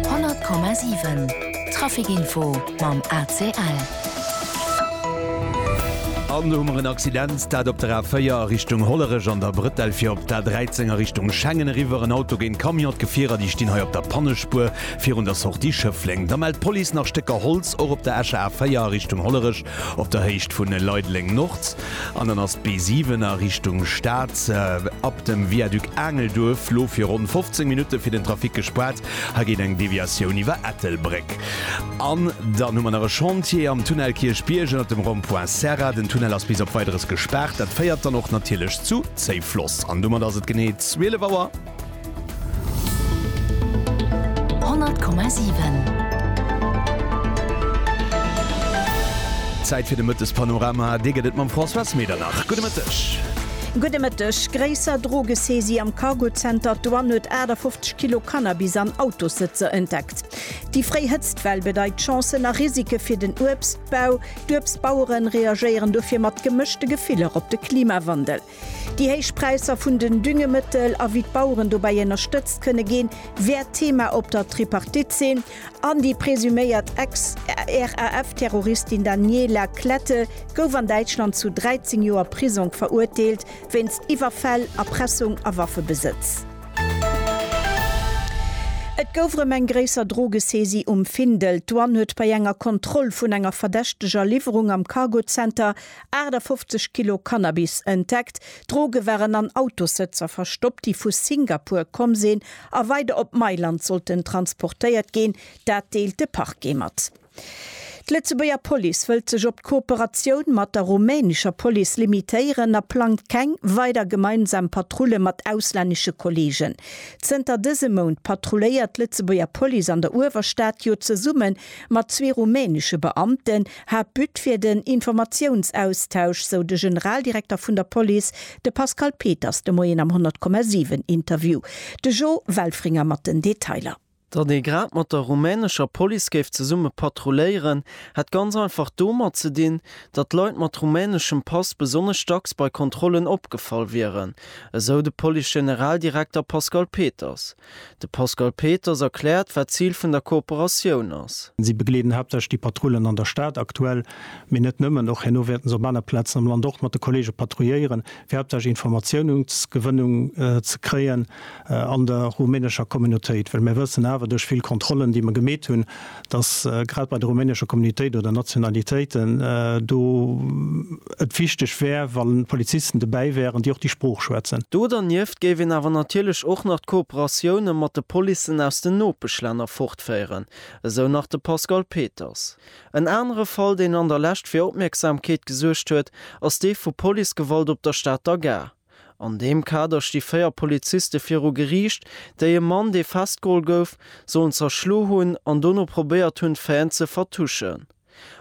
100,7 Trafic info mam ACL. An do hu mer en Accident, dat op der A4 a Richtung Hollerech an der Brëtell fir op d'A13 a Richtung Schengen eriwwer. En Auto géint Camion, d'Gefierer déi stinn hei op der Pannespuer virun der Sortie Schëffleng. Da mellt d'Police nach Stécker Holz och op der Escher A4 a Richtung Hollerech op der Héicht vu Leideleng-Nord. An dann ass d'B7 a Richtung Stad ab dem Viaduc Aangelduerf lo fir ronn 15 Minutte fir den Trafic gespaart. Hei geet eng Deviatioun iwwer Ettelbréck. An dann hu mer nach e Chantier am Tunnel Kierchbierg ënnert dem Rond-point Serra. Den Tunnel ass bis op Weideres gespaart. Dat féiert dann och natierlech zu Zéifloss. An domat ass et genee 12 Auer. Zäit fir de Mëttespanorama. Dee gëtt et mam Françoise Medernach. Gudde Mëtteg. Gudde Mëtteg. Gréisser Drogesaisie am Cargozenter, D'Douane huet 58 Kilo Cannabis an Autossëtzer entdeckt. Déi fréi Hëtztwell bedeit Chancen a Risike fir den Uebstbau. D'Uebstbaueren reagéieren dofir mat gemëschte Gefiller op de Klimawandel. Déi héich Präisser vun den Düngemëttel a wéi d'Baueren dobäi ënnerstëtzt kënne ginn, wäert Thema op der Tripartite sinn. An déi presuméiert Ex-RAF-Terroristin Daniela Klette gouf an Däitschland zu 13 Joer Prisong verurteelt, wéinst Iwwerfäll, Erpressung a Waffebesëtz. Et gouf erëm eng gréisser Drogesaisie um Findel. D'Douane huet bei enger Kontroll vun enger verdächteger Liwwerung am Cargo Center 58 Kilo Cannabis entdeckt, Droge waren an Autossëtzer verstoppt, déi vu Singapur komm sinn a weider op Mailand sollten transportéiert ginn. Dat deelt de Parquet mat. D'Lëtzebuerger Police wëllt sech op d'Kooperatioun mat der rumänescher Police limitéieren a plangt keng weider gemeinsam Patrulle mat auslännesche Kolleegen. Zënter dësem Mount patrulléiert d'Lëtzebuerger Police an der Uewerstad jo zesumme mat zwee rumänesche Beamten, Haaptbut wier den Informatiounsaustausch, sou de Generaldirekter vun der Police, de Pascal Peters, de Moien am 100,7 Interview. De Jo Welfringer mat den Detailer. Datt ee grad mat der rumänescher Police géif zesumme patrulléieren, hätt ganz einfach domat ze dinn, datt Leit mat rumäneschem Pass besonnesch dacks bei Kontrollen opgefall wieren, esou de Police-Generaldirekter Pascal Peters. De Pascal Peters erkläert, wat d'Zil vun der Kooperatioun ass. Si begleeden haaptsächlech déi Patrullen an der Stad aktuell, mee net nëmmen. Och herno wäerten se op aner Plazen am Land och mat de Kolleege patrouilléieren, fir haaptsächlech Informatiounsgewënnung ze kréien an der rumänescher Communautéit. Well mir wëssen awer duerch vill Kontrollen, déi mer gemeet hunn, dass grad bei de rumänesche Communitéiten oder Nationalitéiten do et wichteg wär, wa Polizisten dobäi wären, déi och déi Sprooch schwätzen. Do dernieft géif een awer natierlech och nach d'Kooperatioune mat de Policen aus den Nopeschlänner fortféieren, esou nach de Pascal Peters. En anere Fall, deen an der Lescht fir Opmierksamkeet gesuergt huet, ass dee vu Policegewalt op der Stater Gare. An deem Kader sti véier Poliziste viru Geriicht, déi e Mann, dee festgeholl gouf, sollen zerschlo hunn an dono probéiert hunn, d'Faiten ze vertuschen.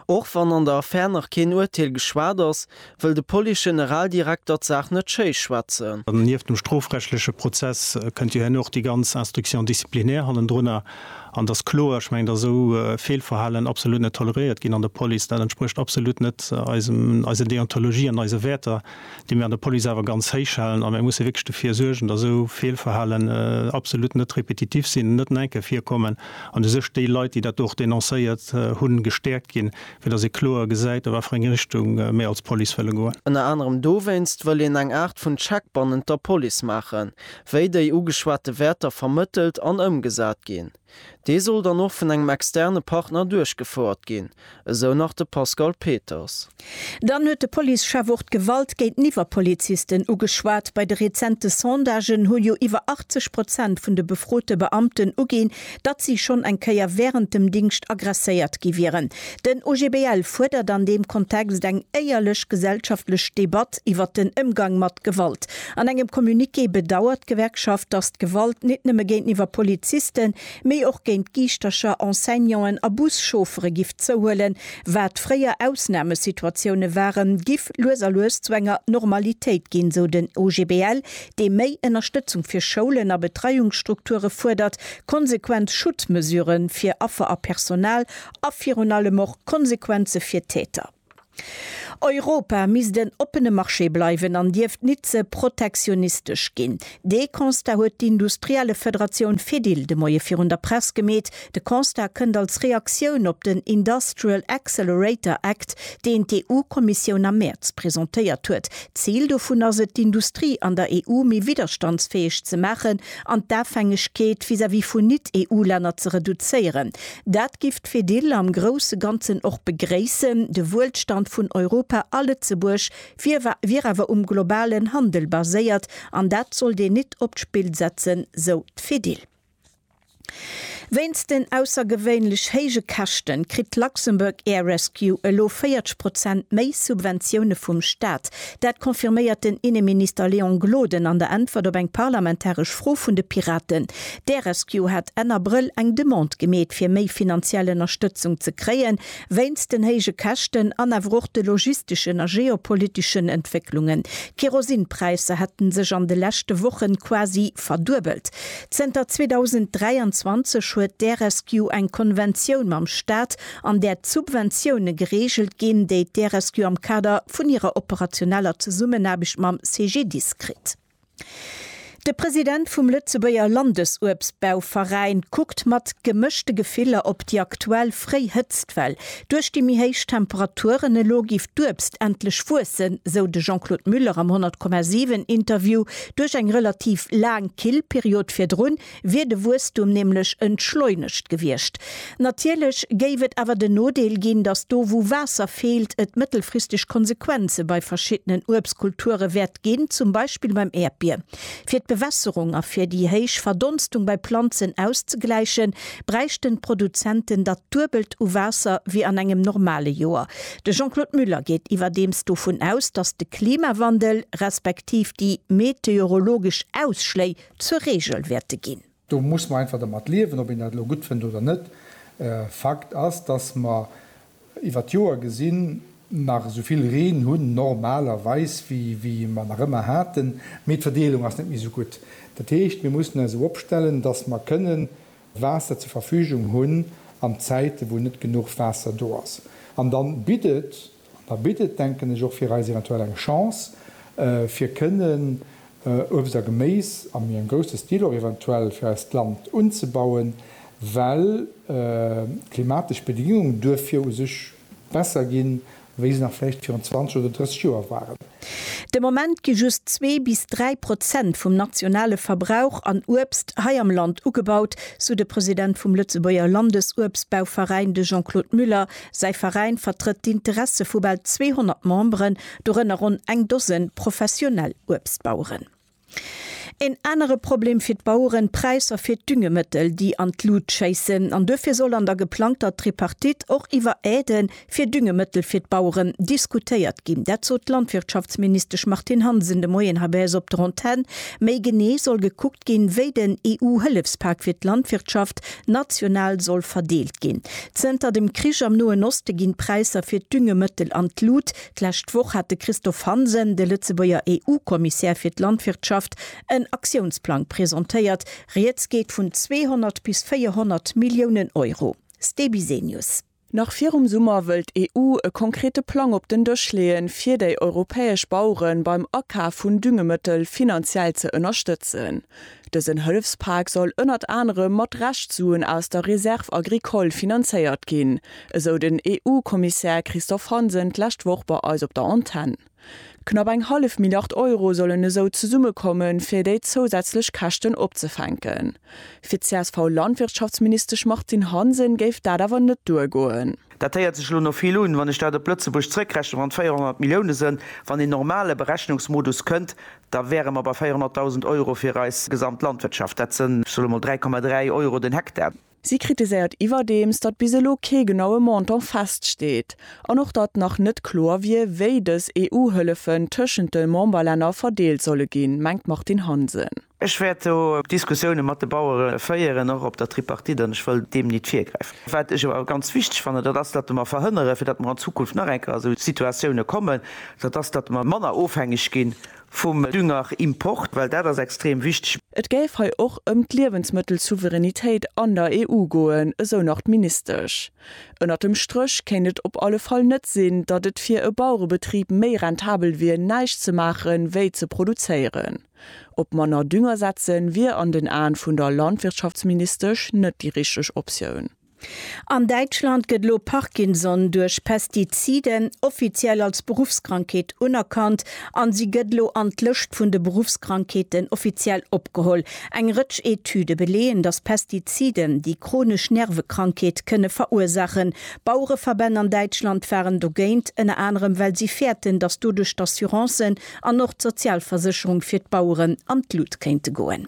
Och wann an der Affär nach keen Urteel geschwat ass, wëll de Police-Generaldirekter d'Saach net schéi schwätzen. Nieft dem strofrechtleche Prozess kënnt jo herno och déi ganz Instruction disciplinaire hannendrunner. An et ass kloer, ech mengen, datt esou Feelverhalen absolut net toleréiert ginn an der Police. Dat entsprécht absolut net eisem, eiser Deontologie an eise Wäerter. déi mir an der Police awer ganz héich halen. A mir musse wierklech dofir suergen, datt esou Feelverhalen absolut net repetitiv sinn, net nach eng Kéier virkommen an u sech déi Leit, déi dat do och denoncéiert hunn, gestäerkt ginn, fir datt ee kloer gesäit, a wat fir eng Richtung mir als Police wëlle goen. Ënner anerem dowéinst wëll een eng Aart vun Check bannent der Police maachen, wéi déi ugeschwate Wäerter vermëttelt an ëmgesat ginn. Dee soll dann och vun engem externe Partner duerchgefouert ginn, esou nach de Pascal Peters. Dann huet de Policechef och d'Gewalt géinteniwwer Polizisten ugeschwat. Bei de rezente Sondagen hu jo iwwer 80 Prozent vun de befrote Beamten uginn, datt si schonn eng Kéier wärend dem Dingscht aggresséiert gi wieren. Den OGBL fuerdert an deem Kontext eng éierlech gesellschaftlech Debatt iwwer den Émgang mat Gewalt. An engem Communiqué bedauert d'Gewerkschaft, datt d'Gewalt nit nëmme géinteniwwer Polizisten, mee och géint Giischtercher, Enseignanten a Buschauffere giff zouhuelen. Wat fréier Ausnamesituatioune waren, giff lues a lues zu enger Normalitéit ginn, sou den OGBL, dee méi Ënnerstëtzung fir Schoulen a Betreiungsstrukture fuerdert, konsequent Schutzmesurë fir Affer a Personal a virun allem och Konsequenze fir Täter. Europa misst en oppene Marché bleiwen an dierft nit ze protektionistesch ginn. Dee Constat huet d'Industriellefederatioun Fedil de Moie virun der Press gemeet. De Constat kënnt als Reaktioun op den Industrial Accelerator Act, deen d'EU-Kommissioun am Mäerz presentéiert huet. D'Zil dovun ass et, d'Industrie an der EU méi widderstandsfäeg ze maachen an d'Afhängegkeet vis-à-vis vun Nit-EU-Länner ze reduzéieren. Dat giff D'Fedil am grousse Ganzen och begréissen. De Wuelstand vun Europa a Lëtzebuerg wier awer um globalen Handel baséiert an dat sollt een nit op d'Spill setzen, sou d'Fedil. Wéinst den aussergewéinlech héije Käschte kritt d'Luxembourg Air Rescue elo 40 Prozent méi Subventioune vum Staat. Dat confirméiert den Inneminister Léon Gloden an der Äntwert op eng parlamentaresch Fro vun de Piraten. D'Aerescue hat Enn Abrëll eng Demande gemeet fir méi finanziell Ënnerstëtzung ze kréien, wéinst den héije Käschten an awer och de logisteschen a geopoliteschen Entwécklungen. D'Kerosinpräisser hätte sech an de leschte Woche quasi verduebelt. Zënter 2023 huet d'Aerescue eng Konventioun mam Staat, an där d'Subventioune gereegelt ginn, déi d'Aerescue am Kader vun hirer operationeller Zesummenaarbecht mam CGDIS kritt. De President vum Lëtzebuerger Landesuebstbauveräin kuckt mat gemëschte Gefiller op déi aktuell fréi Hëtztwell. Duerch déi méi héich Temperaturen elo géif d'Uebst endlech wuessen, sou de Jean-Claude Muller am 100,7 Interview. Duerch eng relativ laang kill Period virdrun, wier de Wuesstum nämlech entschleunegt gewiescht. Natierlech géif et awer den Nodeel ginn, datt do wou Waasser feelt, et mëttelfristeg Konsequenze bei verschiddenen Uebstkulture wäert ginn, zum Beispill beim Äerdbier. Fir d'Bewässerung a fir déi héich Verdonstung bei Planzen auszegläichen, bräichten d'Produzenten dat duebelt u Waasser wéi an engem normale Joer. De Jean-Claude Muller geet iwwerdeems dovun aus, datt de Klimawandel respektiv déi meteorologesch Ausschléi, zur Reegel wäerte ginn. Do muss mer einfach dermat liewen, ob een dat elo gutt fënnt oder net. Fakt ass, dass mer iwwer d'Joer gesinn nach esou vill Reen hunn, normalerweis, wéi mer nach ëmmer haten, mee d'Verdeelung ass net méi esou gutt. Dat heescht, mir mussen eis esou opstellen, dass mer kënnen Waasser zur Verfügung hunn an Zäite wou net genuch Waasser do ass. An da bitt et An da bitt et, denken ech, och fir eis eventuell eng Chance, fir kënnen Uebst a Geméis a méi engem grousse Stil och eventuell fir eist Land unzebauen, well d'klimatesch Bedingungen duerfir u sech besser ginn, wéi se nach vläicht virun 20 oder 30 Joer waren. De Moment gi just zwee bis dräi Prozent vum nationale Verbrauch an Uebst hei am Land ugebaut, sou de President vum Lëtzebuerger Landesuebstbauveräin, de Jean-Claude Muller, Säi Veräin vertrëtt d'Interesse vu bal 200 Memberen, dorënner ronn eng Dosen professionell Uebstbaueren. Een anere Problem fir d'Baueren, d'Präisser fir d'Düngemëttel, déi an d'Lut schéissen. An duerfir soll an der geplangter Tripartite och iwwer Aide fir Düngemëttel fir d'Baueren diskutéiert ginn. Dat sot d'Landwirtschaftsministesch Martine Hansen de Moien hei bei eis op der Antenn. Méi genee soll gekuckt ginn, wéi den EU-Hëllefspak fir d'Landwirtschaft National soll verdeelt ginn. Zënter dem Krich am Noen Oste ginn d'Präisser fir d'Düngemëttel an d'Lut. D'lescht Woch hat de Christophe Hansen, de Lëtzebuerger EU-Kommissär fir d'Landwirtschaft, en Aktiounsplang presentéiert. Rieds geet vun 200 bis 400 Milliounen Euro. Ste Bisenius. Nach virum Summer wëll d'EU e konkrete Plang op den Dësch leeën, fir déi europäesch Baueren beim Akaf vun Düngemëttel finanziell ze ënnerstëtzen. Dësen Hëllefspak soll ënnert anerem mat Reschtsuen aus der Réserve agricole finanzéiert ginn, esou den EU-Kommissär Christophe Hansen d'lescht Woch bei eis op der Antenn. Knapp eng hallef Milliard Euro sollen esou zesummekommen, fir déi zousätzlech Käschten opzefänken. Fir d'CSV-Landwirtschaftsministesch Martine Hansen géif dat awer net duergoen. Dat héiert sech elo no vill un. Wann ech dat op Lëtzebuerg zrëckrechnen, wann et 400 Milliounen sënn, wann een normale Berechnungsmodus kënnt, da wäre mer bei 400.000 Euro fir eis gesamt Landwirtschaft. Dat sënn, ech soe mol 3,3 Euro den Hektar. Si kritiséiert iwwerdeems, datt bis elo kee genaue Montant feststeet an och datt nach net kloer wier, wéi dës EU-Hëllefen tëschent de Memberlänner verdeelt solle ginn, mengt d'Martine Hansen. Ech wäert do Diskussioune mat de Bauere féieren, och op der Tripartite, an ech wëll deem nit virgräifen. Wat ech awer ganz wichteg fannen, dat ass, datt mer verhënnere fir datt mer an Zukunft nach eng Kéier esou Situatioune kommen, dat ass, datt mer manner ofhängeg gi vum Düngerimport, well dat ass extrem wichteg. Et géif hei och ëm d'Liewensmëttelsouveränitéit an der EU goen, esou nach d'Ministesch. Ënnert dem Stréch kéint et op alle Fall net sinn, datt et fir e Bauerebetrib méi rentabel wier näischt ze maache wéi ze produzéieren. Op manner Dünger setze wier an den Aen vun der Landwirtschaftsministesch net déi richteg Optioun. An Däitschland gëtt elo Parkinson duerch Pestiziden offiziell als Beruffskrankheet unerkannt an si gëtt elo an d'Lëscht vun de Beruffskrankheeten offiziell opgeholl. Eng Rëtsch Etüde beleeën, datt Pestiziden déi chronesch Nervekrankheet kënne verursaachen. Bauereverbänn an Däitschland waren dogéint, ënner anerem well si fäerten, datt doduerch d'Assurancen an och d'Sozialversécherung fir d'Baueren an d'Lut kéinte goen.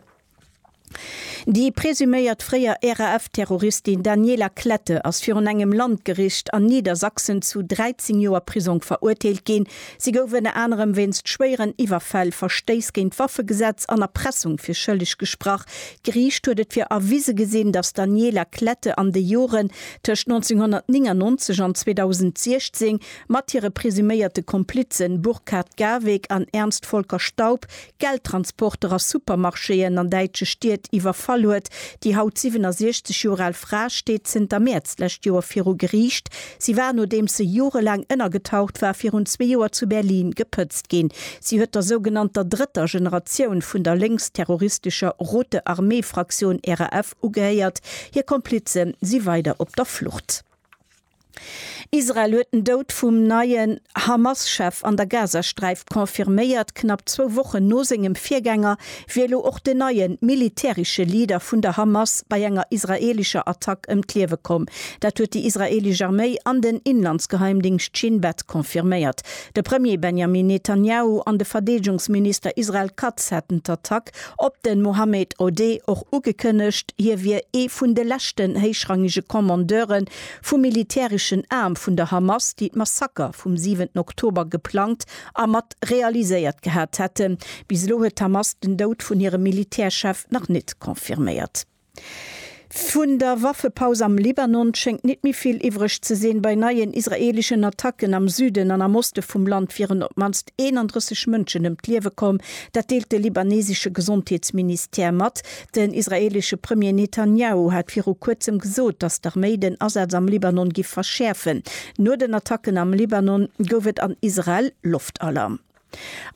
Déi presuméiert fréier RAF-Terroristin Daniela Klette ass virun engem Landgericht an Niedersachsen zu 13 Joer Prisong verurteelt ginn. Si gouf ënner anerem wéinst schwéieren Iwwerfäll, Verstéiss géint d'Waffegesetz an Erpressung fir schëlleg gesprach. D'Geriicht huet et fir erwise gesinn, datt d'Daniela Klette an de Joren tëscht 1999 an 2016 mat hire presuméierte Komplizen Burkhard Garweg an Ernst Volker Staub Geldtransporter a Supermarchéen an däitsche Stied iwwerfall huet. Déi haut 67 Joer al Fra steet zënter Mäerz d'lescht Joer viru Geriicht. Si war, nodeems se jorelaang ënnergetaucht war, virun zwee Joer zu Berlin gepëtzt ginn. Si huet der sougenannter drëtter Generatioun vun der lénksterroristescher Rote Armee-Fraktioun, RAF, ugehéiert. Hir Komplize si weider op der Flucht. Israel huet den Doud vum neien Hamas-Chef an der Gazasträif confirméiert. Knapp zwou Wochen no sengem Virgänger wier elo och den neie militäresche Leader vun der Hamas bei enger israeelescher Attack ëm d'Liewe komm. Dat huet déi israeelesch Arméi an den Inlandsgeheimdingscht Shin Bet confirméiert. De Premier Benjamin Netanjahu an de Verdeedegungsminister Israel Katz hätten d'Attack op de Mohammed Odeh och ugekënnegt. Hie wier ee vun de leschten héichrangege Commandeuren, Vum militäreschen Aarm vun der Hamas, déi d'Massaker vum siwenten Oktober geplangt a mat realiséiert gehat hätten. Bis elo huet d'Hamas den Doud vun hirem Militärchef nach net confirméiert. Vun der Waffepaus am Libanon schéngt net méi vill iwwreg ze sinn. Bei neien israeeleschen Attacken am Süden an am Oste vum Land wieren op d'mannst 31 Mënschen ëm d'Liewe komm. Dat deelt de libanesesche Gesondheetsministère mat. Den israeelesche Premier Netanjahu hat viru Kuerzem gesot, datt d'Arméi den Asaz am Libanon giff verschäerfen. No den Attacken am Libanon gouf et an Israel Loftalarm.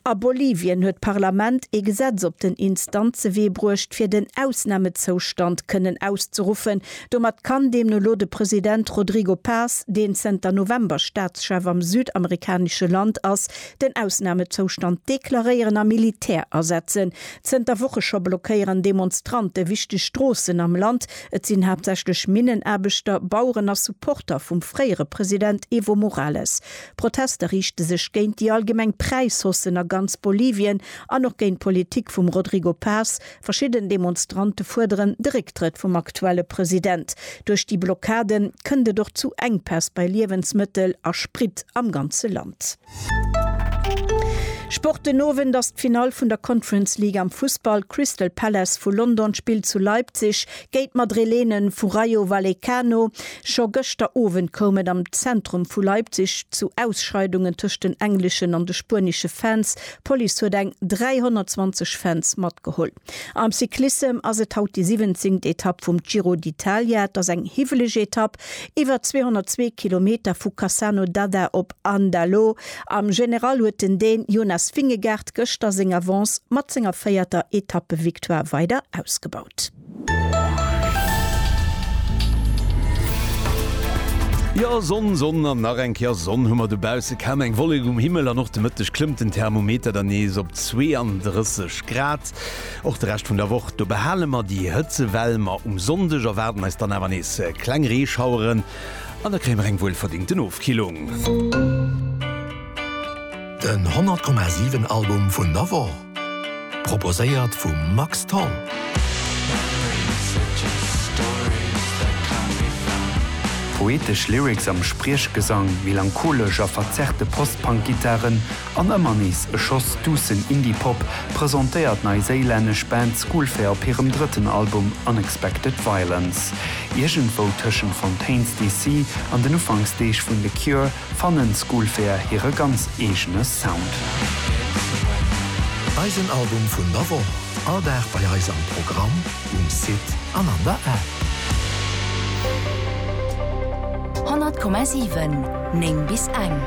A Bolivien huet d'Parlament ee Gesetz op den Instanzewee bruecht, fir den Ausnamezoustand kënnen auszeruffen. Domat kann deemno lo de President Rodrigo Paz, deen zënter November Staatschef am südamerikanesche Land ass, den Ausnamezoustand deklaréieren a Militär asetzen. Zënter Woche scho blockéieren Demonstrante wichteg Stroossen am Land. Et sinn haaptsächlech Minnenaarbechter, Baueren a Supporter vum fréiere President Evo Morales. D'Protester riichte sech géint déi allgemeng Präishaussen a ganz Bolivien an och géint d'Politik vum Rodrigo Paz. Verschidden Demonstrante fuerderen de Récktrëtt vum aktuelle President. Duerch déi Blockade kënnt et och zu Enkpäss bei Liewensmëttel a Sprit am ganze Land. Sport Den Owend ass d'Finall vun der Conference League am Fussball. Crystal Palace vu London spillt zu Leipzig géint d'Madrilenen vu Rayo Vallecano. Scho gëschter Owend koum et am Zentrum vu Leipzig zu Ausscheidungen tëscht den engleschen an de spuenesche Fans. D'Police huet eng 320 Fans matgeholl. Am Cyclissem ass et haut déi siwenzéngt Etapp vum Giro d'Italia. Et ass eng hiwweleg Etapp Iwwer 202 Kilometer vu Cassano d'Adda op Andalo. Am General huet den Dän Jonas Vingegaard gëschter seng Avance mat senger véierter Etappevictoire weider ausgebaut. Jo, Sonn, Sonn an nach eng Kéier Sonn hu mer dobausse. Kaum eng Wollek um Himmel an och de Mëtteg klëmmt den Thermometer dann nees op 32 Grad. Och de Rescht vun der Woch do behale mer déi Hëtzewell, ma um Sonndeg erwaarden eis dann awer nees kleng Reeschaueren an da kréie mer eng wuelverdingten Ofkillung. Den 100,7 Album vun der Woch, proposéiert vum Max Tholl. Poetesch Lyrics am Spriechgesang, melancholesch a verzerrte Post-Punk-Gittaren An ëmmer nees e Schoss duussen Indie-Pop presentéiert d'neiséilännesch Band Schoolfair op hirem drëtten Album Unexpected Violence. Iergendwou tëschent Fontaines DC. an den Ufanksdeeg vun The Cure fannen Schoolfair hire ganz eegene Sound. Eisen Album vun der Woch, all Dag bei eis am Programm. Um Site an an der App. 100,7, 9 bis eng.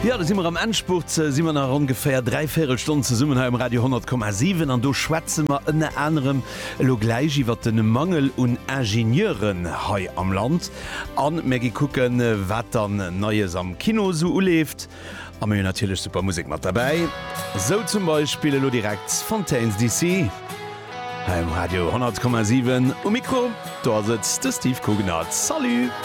Jo, do si mer am Endspurt, si mer nach ongeféier dräi Véierelstonn zesummen hei um Radio 100,7 an do schwätze mer ënner anerem elo gläich iwwert de Mangel un Ingenieuren hei am Land a mir gi kucken, wat dann Neies am Kino esou uleeft. A mir hunn natierlech super Musek mat derbäi, sou zum Beispill elo direkt Fontaines DC hei um Radio 100,7. Um Mikro do ass et de Steve Cooganert. Salut!